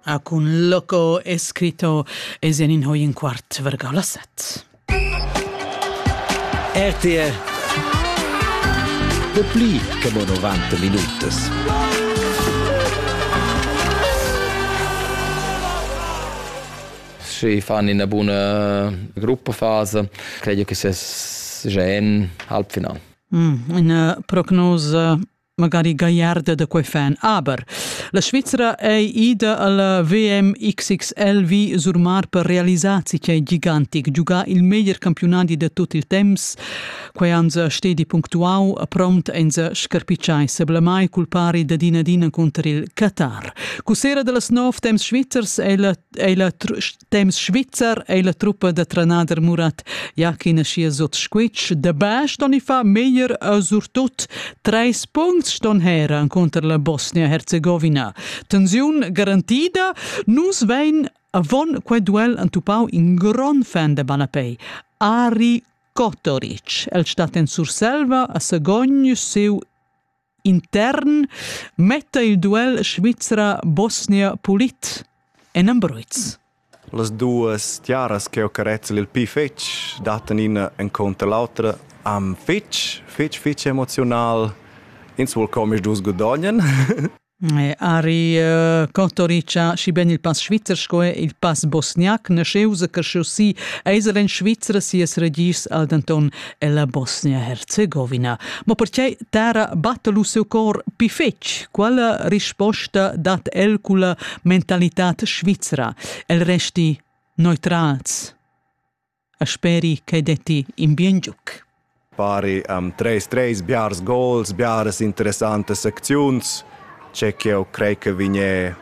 A cun Loco escritto es in in hoi in quart vergà la set. RTR De pli che mo 90 minutas. Si fan in buona gruppafase, credo che se gen halb final. Mm, in prognosa magari gagliarda da quei fan aber. La Svizzera ei ida alla VMXXL vi Surmar per realisar quei gigantic, giugar il meglier campionadi de tot il temps. Quei han se stedi punctuau, prompt ein se scarpicciai seblamai culpari da din ad in contr il Qatar. Cu sera dellas nov temps svizzers ei la, ei la Temps svizzer ei la truppa da trenader Murat ja ch'ina sia sot squitsch de bash don i fa meglier a surtut treis punts ston heran conter la Bosnia-Herzegovina. Tensiun garantida, nus vein avon quei duel entupau in gron fan de Balapei. Ari Kotoric, el stat en Surselva a Sagogn siu intern metta il duel Svizra-Bosnia-Polit en Ambruiz. Las duas tiaras che ho carezzel il pi fetg dattan ina encounter l'autra am fetg, fetg, fetg emozional. Ins vuol com is dus godognen. Ari Kotorica și ben il pas svizzer sco il pas bosniac ne scheusa che chaussì eiseren Svizra sies regis al denton ella Bosnia-Herzegovina. Ma pertgei tara batta lu seu cor pi fetg? Quella risposta dat el culla mentalitat svizra. El resti neutrals. A speri che detti in bien giuc. Pari am treis treis biars gols, biaras interessantas secziuns. C'è che eu crei che vigne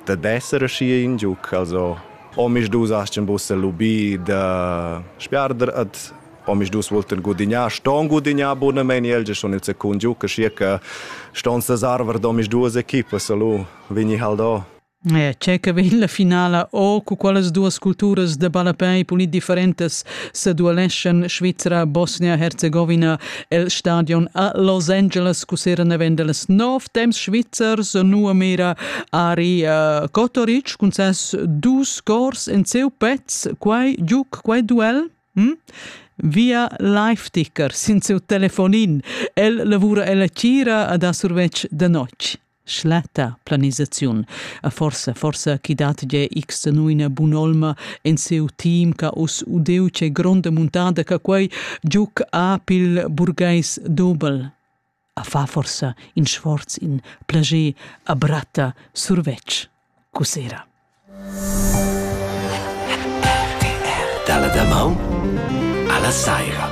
da d'essere schi in giuc, also om ich du sagst ein bisschen lubì da spiarder ad omisdus voltel gudignar ston gudignar bunamein el ge schon il secund giu che schia che ston se sarver d'omisduas equipas lu vegni haldo Eh, c'è che vegn la finala o cu qualas duas culturas de ballapei pulit differentas se dueleschan Svizzera, Bosnia-Herzegovina el stadion a Los Angeles cu sera nevendeles nov temps svizzers nu a mera ari uh, Kotoric cun ses dus scors en seu pezz quai giuc quai duel Hm? Via Live-Ticker sin siu telefonin. El lavura ella tgira ad a survetsch de notg. Schletta planisaziun. A forsa, forsa chi dat ge x genuina bunolma en seu team ca us udeu ce gronda muntada ca quei giuc apil burgais dobel. ha fa forsa in sforz, in plager a bratta survetsch cussera. RTR dalla damaun alla saira.